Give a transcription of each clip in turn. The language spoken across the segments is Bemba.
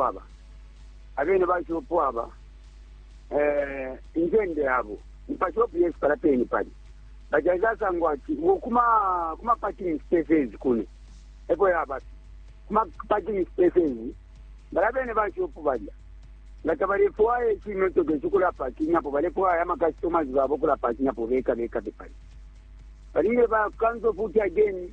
aba abene baishiba upo aba eh, incende yabo mupashi wapu yesu pala peni pali bajaisa asangwa ati uwo kuma kuma parking spaces kuno eko yaba kuma parking spaces bala bene baishiba upo balya nga tabalefwaya icimotoka icikula parking apo balefwaya amakastomers babo kula parking apo beka beka bepali balingile bakanza futi again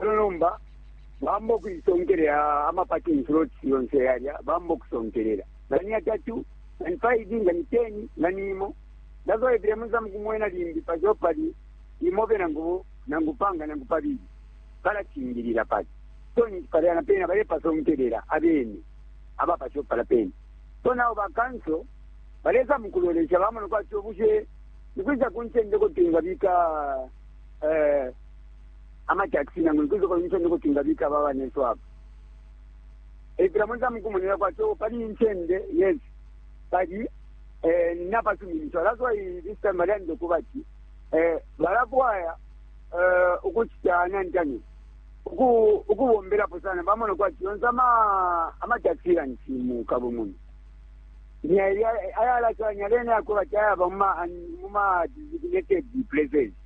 elo nomba bamba ukuisonkelela amapaki insuloti yonse yalya bamba ukusonkelela ngani yatatu ngani five ngani ten ngani imo ndazoyevile muza mukumwena limbi pazo pali imobe nangu nangu panga nangu pabili balacingilila pali so ninti palya na pena balepasonkelela abene abapaso pala pena so nabo bakanso baleza mukulolesha bamona kwati obushe nikwisa kuncendeko twingabika eh, ama taxi nangu nikuzo kwa nchende ko tingabika aba banenso apa eh bila mwanza mkumonera kwa cho pali nchende yes pali eh napa suminisho that's why this time bali ndo kubati eh balakwaya eh ukuchita nantani uku ukubomberapo sana bamona kwati yonse ama amatakisira ntimu kabumuni ayalakanya lene akoba tayaba muma muma designated places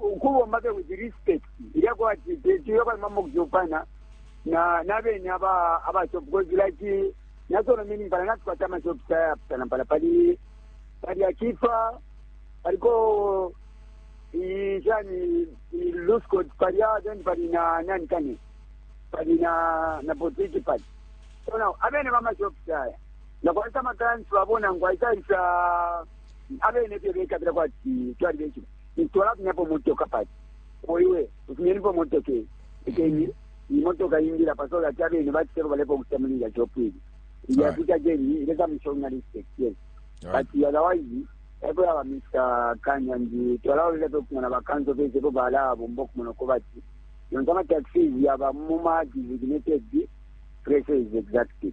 ukubomba fye with respect ilya kwati tuyo kalima mu kuchopana na na bene aba aba shop because like na solo mini pala na tukwata ama shop saya pala pala pali pali akifa paliko ijani lusco pali ya then pali na nani kani pali na na botiki pali so now abene mama shop saya na kwa sama transfer bona ngwa isa isa abene fye bekabila kwati twali bekile twalafunyapo motoka pati oiwe ufunyenipo motoka eyi ikeni imotoka ingila pasola ati abene baciteko balepa ukucita muli ilya shopu ili ilya Alright. kuti ageni ileka mishonga respect yes Alright. but otherwise epo yaba mr kanya ndi twalawolele fye kumona bakanso fese epo balabomba okumona uko bati yonse amataxis yaba muma designated places exactly